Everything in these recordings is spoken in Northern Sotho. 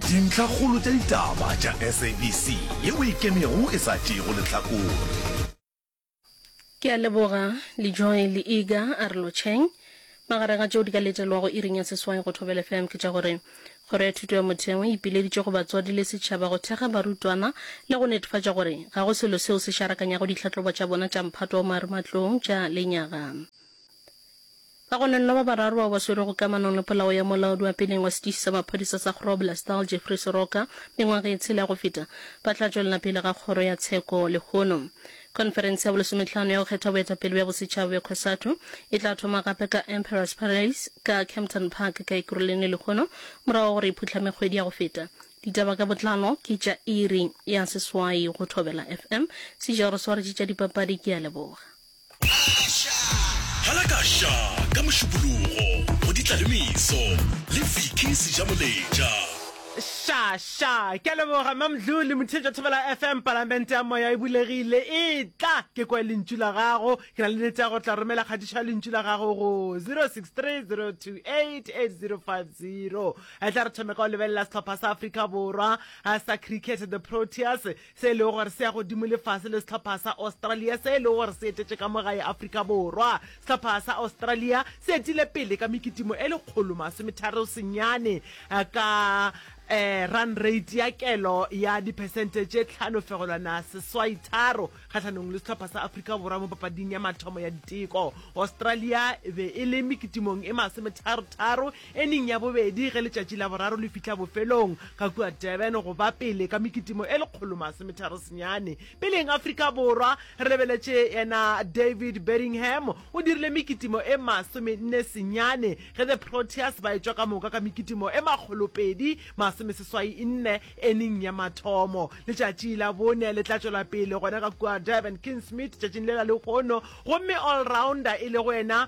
Dintlhakgolo tša ditaba tša SABC ye o e kemego e sa tšeego lehlakore. Ke a leboga Lejoy le Iga Arlocheng. Magareng a tšeo di ka letelwago iring ya seswai go Thobela FM ke tša gore Kgoro ya Thuto ya Motheo e ipileditše go batswadi le setšhaba go thekga barutwana le go netefatša gore ga go selo seo se šarakanyago ditlhahlobo tša bona tša mphato wa marematlou tša lenyaga. Ka gona nna ba bararo bao ba swerwego kamanong le polao ya molaodi wa peleng wa setiši sa maphodisa sa Groblersdal, Jeffrey Soroka, mengwaga ye tshela go feta, ba tla tšwelela pele ga kgoro ya tsheko lehono. Khonferense ya bolesometlhano ya go kgetha boetapele bja bosetšhaba bja Cosatu e tla thoma gape ka Emperor's Palace ka Kempton Park ka Ekurulene lehono, morago ga gore e phuhlame kgwedi ya go feta. Ditaba ka botlalo ke tša iri ya seswai go Thobela FM. Sejaro Swaretše tša dipapadi ke a leboga. Phala ka Sha ka Mošupologo go di tla le meso le Vicky Sejamoletša. Sha, sha. Ke a leboga, Mme Mdlu le Motheetša Thobela FM. Palamente ya Moya e bulegile. Etla ke kwe lentšu la gago. Ke na le nete ya gore o tla romela kgatišo ya lentšu la gago go 0630288050. Etla re thome ka go lebelela sehlopha sa Afrika Borwa sa cricket, the Proteas. se e lego gore se ya godimo lefase le sehlopha sa Australia se e lego gore se etetše ka mo gae Afrika Borwa. Sehlopha sa Australia se etile pele ka mekitimo e lekgolo masometharo senyane ka eh, run rate ya kelo ya diphesente tše tlhano fegolwana seswai tharo kgatlhanong le sehlopha sa Afrika Borwa mo papading ya mathomo ya diteko. Australia be e le mekitimong e masometharo tharo E neng ya bobedi ge letšatši la boraro le fihla bofelong ga kua Durban go ba pele ka mekitimo e lekgolo masometharo senyane. Peleng Afrika Borwa, re lebeletše yena David Bedingham o dirile mekitimo e masomenne senyane ge the Proteas ba etšwa ka moka ka mekitimo e makgolopedi masomeseswainne e neng ya mathomo. Letšatši la bone le tla tšwela pele gona ka kua Durban Kingsmead tšatšing lela lehono gomme all rounder e lego yena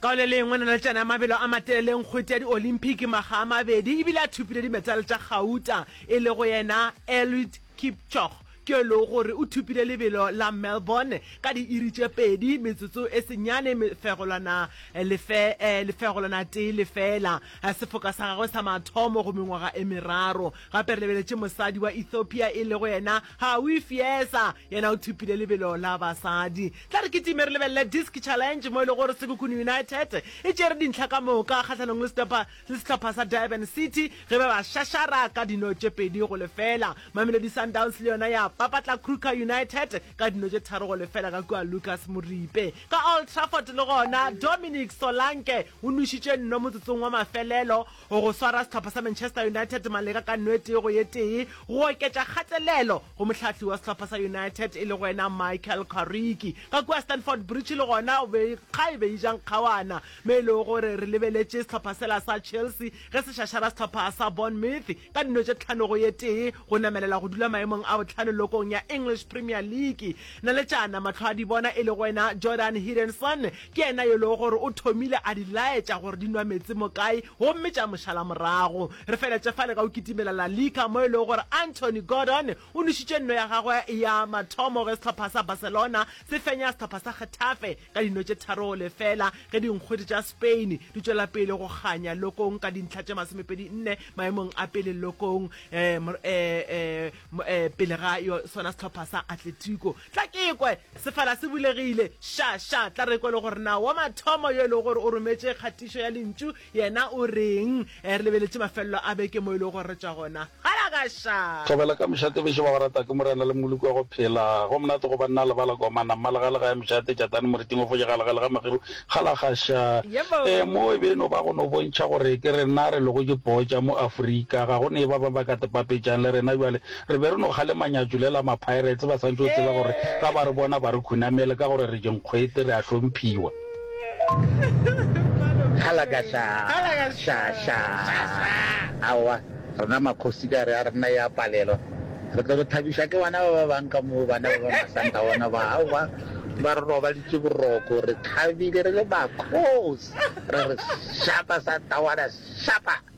Ka go le lengwe, naletšana ya mabelo a matelele nkgwete ya di-Olympic makga a mabedi e bile a thopile dimetale tša gauta, e lego yena Eliud Kipchoge, ke yo e lego gore o thopile lebelo la Melbourne ka diiri tše pedi, metsotso e senyane, mefegolwana lefegolwana tee lefela. Sefoka sa gagwe sa mathomo go mengwaga e meraro. Gape re lebeletše mosadi wa Ethiopia e lego yena Howie Fiesa yena o thopile lebelo la basadi. Tla re kitime re lebelele Disc Challenge mo e le gore Sekhukhune United e tšere dintlha ka moka kgahlanong le sehlopha le sehlopha sa Durban City ge ba ba šašara ka dino tše pedi go lefela. Mamelodi Sundowns le yona ya papatla Kruger United ka dino tše tharo go lefela ka kua Lucas Moripe. Ka Old Trafford le gona Dominic Solanke o nwešitše nno motsotsong wa mafelelo O go swara sehlopha sa Manchester United maleka ka nwete go ye tee go oketša kgatelelo go mohlahli wa sehlopha sa United e lego yena Michael Carrick. Ka kua Stamford Bridge le gona kga e be e ja nkgawana mo e lego gore re lebeletše sehlopha sela sa Chelsea ge se šašara sehlopha sa Bournemouth ka dino tše tlhano go ye tee go namelela go dula maemong a bohlano lokong ya English Premier League. Naletšana mahlo a dibona e lego yena Jordan Hidenson Ke yena yo e lego gore o thomile a di laetša gore di nwa meetse mo kae gomme tša mo šala morago. Re feletše fale ka go kitimela La Liga mo e lego gore Anthony Gordon o nwešitše nno ya gagwe ya mathomo ge sehlopha sa Barcelona se fenya sehlopha sa Getafe ka dino tše tharo go lefela ge dinkgwete tša Spain di tšwela pele go kganya lokong ka dintlha tše masomepedi nne maemong a pele lokong pele ga sona sehlopha sa Atletico Tla ke ekwe! Sefala se bulegile. Ša, ša! Tla re ekwe le gore na wa mathomo yo e lego gore o rometše kgatišo ya lentšu yena o reng. Re lebeletše mafelelo a beke mo e lego gore re tšwa gona. Galagaša! Thobela ka mošate bešo ba go rata ke Morena le Moloko wa go phela go monate go banna le bala komana mma lega lega ya mošate tšatane moriting o foše gale gale ga mageru galagaša Yebo! ee mo e be e no ba go no bontšha gore ke rena re lego dipoo tša mo Afrika ga go ne e ba ba ba ka tepapetšang le rena bjale Re be re no kgalema nyatšo le la ma-Pirates ba santše go tseba gore ga ba re bona ba re khunamele ka gore re dinkgwete, re a hlomphiwa. Kgalaga xa, xa, xa, aowa, rena makgosi ka re a rena ya palelwa. Re tlo re thabiša ke bana ba ba bang ka moo, bana ba ba masanta bona ba, aowa, ba re robaditše boroko, re thabile re le makgosi, re re, Shapa, Santawana, shapa!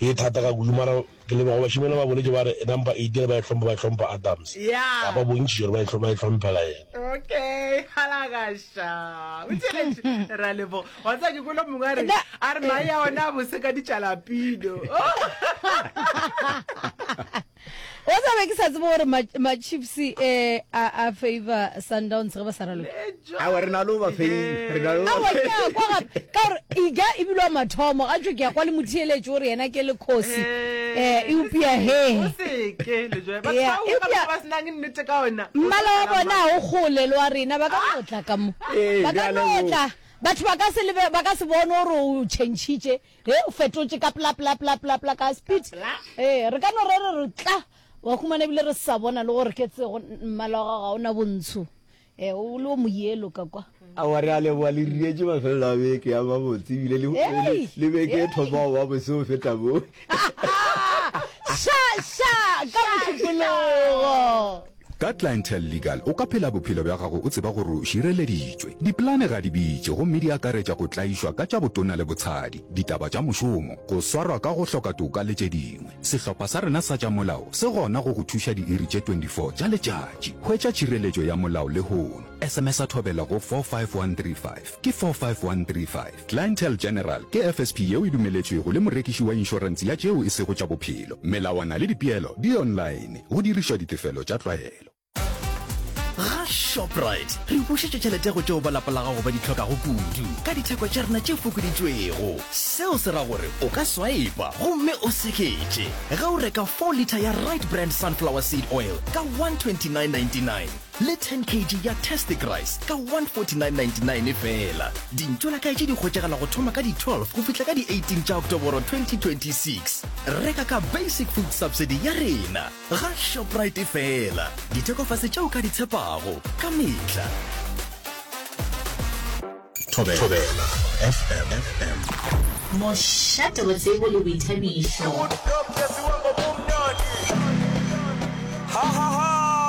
Ke thata ka kudu mara ke leboga go bašemane ba boletše ba re number eight le ba e hlompha ba e hlompha Adams ka ba bontšitše gore ba e ba e hlomphela yena. Okay, halagaša. O tšeletše ra lebo. Wa tsa ke kolo mongwe a re a re mae ya ona a bose ka ditšalapino. wa tsa be ke sa tsebe gore ma-chiefs ma eh, a, a favor sundowns ge ba sa raloke awa re na le ba feiawa ke a kwa gape ka gore ija ebile wa mathomo ga tso ke ya kwa le motheeletso gore yena ke le kgosi um eh, eupia heeeammala wa bona o gole le wa rena ba ka ah! notla ka mo ba ka notla batho ba ka se bone gore o changitše He, o fetotše ka pla, pla, pla, pla, pla, ka speed. Ee, re ka no re re re tla, wa humana ebile re sa bona le gore ke tsego, mmala wa gago ga o na bontsho. Ee, o le o moyelo ka kwa. Aowa, re a leboga, le rietše mafelelo a beke ya mabotse ebile le, le, le beke e thoma go ba bose go feta moo. Sha, sha, ka mošupologo! Ka Clientele Legal o ka phela bophelo bja gago o tseba gore o šireleditšwe. Dipolane ga di bitše gomme di akaretša go tlaišwa ka tša botona le botshadi, ditaba tša mošomo, go swarwa ka go hloka toka le tše dingwe. Sehlopha sa rena sa tša molao se gona go go thuša diiri tše 24 tša letšatši. Hwetša tšhireletšo ya molao lehono. Sms-a thobela go 45135. Ke 45135. Clientele General ke FSP yeo e dumeletšwego le morekiši wa inšorense ya tšeo e sego tša bophelo. Melawana le dipeelo di online, go dirišwa ditefelo tša tlwaelo. Ga Shoprite re bušetša tšhelete go tšeo ba lapa la gago ba di hlokago kudu ka ditheko tša rena tše fokoditšwego. Seo se ra gore o ka swaipa gomme o seketše ge o reka four litre ya Rite Brand Sunflower Seed Oil ka 129.99. le 10 kg ya tastic rice ka 149.99 feela dintšo la kaetše di kgotšegela go thoma ka di 12 go fihla ka di 18 tša oktoboro 2026 reka ka basic food subsidy ya rena ga shoprite feela dithekofase tšeo ka di tshepago ka mehla Thobela FM. Mošate wa tsebo le boithabišo.